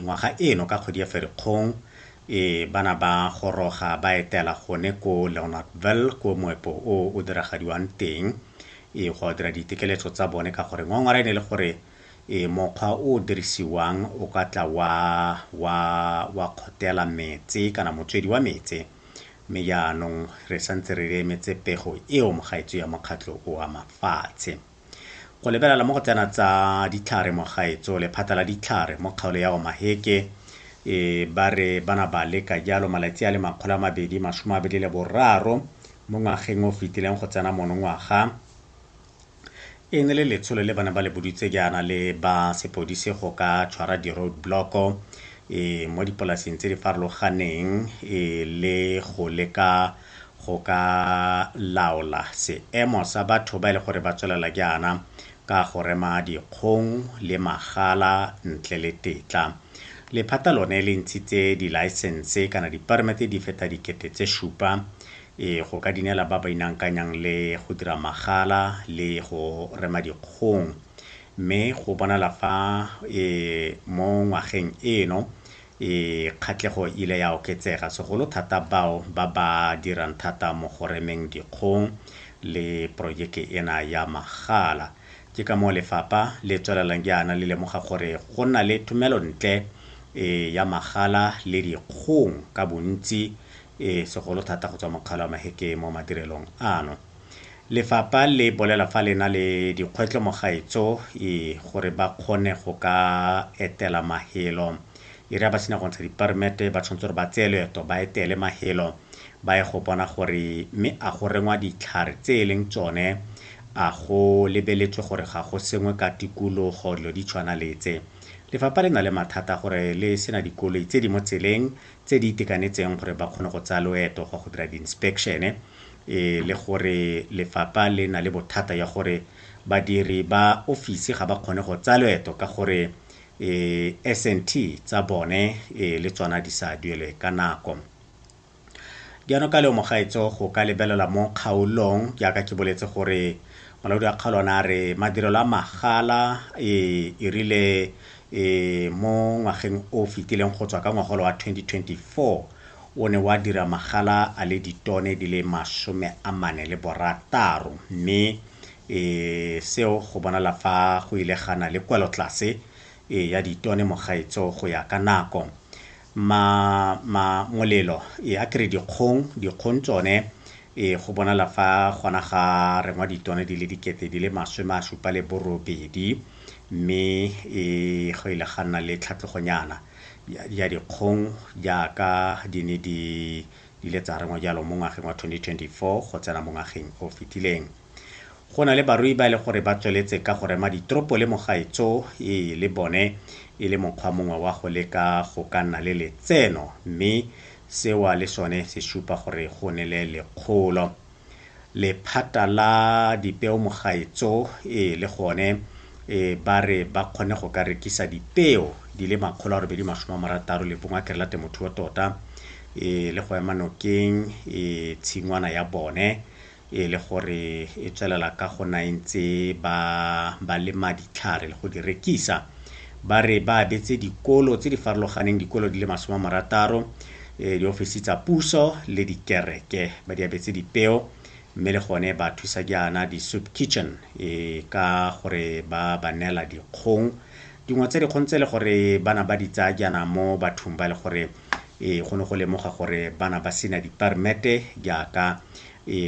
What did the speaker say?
Ngwaga eno ka kgwedi ya Ferikgong, bana ba goroga ba etela gone ko Leonardville ko moepo o o diragadiwang teng go a dira ditekeletso tsa bone ka gore ngwangwara e ne le gore mokgwa o o dirisiwang o ka tla wa wa wa kgotela metse kana motswedi wa metse mme jaanong re santse re emetse pego eo mogaetso ya mokgatlho o a mafatshe Go lebelela mo go tsena tsa ditlhare mo gaetso lephata la ditlhare mo kgaolo ya Omaheke e ba re bana ba leka jalo malatsi a le makgolo a mabedi masome a mabedi le boraro mo ngwageng o fetileng go tsena monongwaga e ne le letsholo le bana ba le boditse jaana le ba sepodise go ka tshwara di-road blocko e mo dipolaseng tse di farologaneng e le go leka go ka laola seemo sa batho ba e le gore ba tswelela jaana ka go rema dikgong le magala ntle le tetla. Lephata lone le ntshitse dilaesense kana dipermete di feta dikete tse supa e go ka dinela ba ba inankanyang le go dira magala le go rema dikgong mme go bonala fa e mo ngwageng eno e kgatlhego e ile ya oketsega, segolo thata bao ba ba dirang thata mo go remeng dikgong le porojeke ena ya magala. Ke ka moo lefapha le tswelelang jaana le lemoga gore go nna le thomelontle e ya magala le dikgong ka bontsi e segolo thata go tswa mo Kgaolo ya Maheke mo madirelong ano. Lefapha le bolela fa le na le dikgwetlo mo gaetso e gore ba kgone go ka etela mahelo. E re ha ba sena go ntsha diperimete ba tshwanetse gore ba tseye loeto ba etele mahelo ba ye go bona gore mme a go rengwa ditlhare tse e leng tsone, a go lebeletswe gore ga go sengwe ka tikologo, dilo di tshwana le tse. Lefapha le na le mathata a gore le sena dikoloi tse di mo tseleng tse di itekanetseng gore ba kgone go tsaya loeto go ya go dira di-inspection-e le gore lefapha le na le bothata ya gore badiri ba office ga ba kgone go tsaya loeto ka gore S_N_T tsa bone le tsona di sa duelwe ka nako. Jaanong ka leomo gaetsho go ka lebelelwa mo kgaolong jaaka ke boletse gore molaodi wa kgaolo ona a re madirelo a magala e rile e mo ngwageng o fetileng go tswa ka ngwagolo wa 2024 o ne wa dira magala a le ditone di le masome a mane le borataro mme e seo go bonala fa go ile gana le kwelotlase e ya ditone mogaetso go ya ka nako. Ma, ma, molelo. E a ke re dikgong, dikgong tsone, e go bonala fa gona ga rengwa ditone di le dikete di le masome a supa le borobedi, mme e go ile ga nna le tlhatlogonyana ya, ya dikgong jaaka di ne di, di ile tsa rengwa jalo mo ngwageng wa 2024 go tsena mo ngwageng o fetileng. Go na le barui ba e le gore ba tsweletse ka go rema ditropo le mogaetso e le bone e le mokgwa mongwe wa go leka go ka nna le letseno mme sewa le sone se supa gore go ne le lekgolo. Lephata la dipeo mogaetso e le gone e ba re ba kgone go ka rekisa dipeo di le makgolo a robedi masome a marataro le bongwe a kerela temothuo tota e le go ema nokeng e tshingwana ya bone e le gore e tswelela ka go na e ntse ba ba lema ditlhare le go di rekisa ba re ba abetse dikolo tse di farologaneng dikolo di le masome a marataro eh, diofisi tsa puso le dikereke ba di abetse dipeo mme le gone ba thusa jaana di-soup kitchen e ka gore ba ba neela dikgong dingwe tsa dikgong tse e le gore bana ba di tsaya jaana mo bathong ba e le gore e go ne go lemoga gore bana ba sena dipermete jaaka e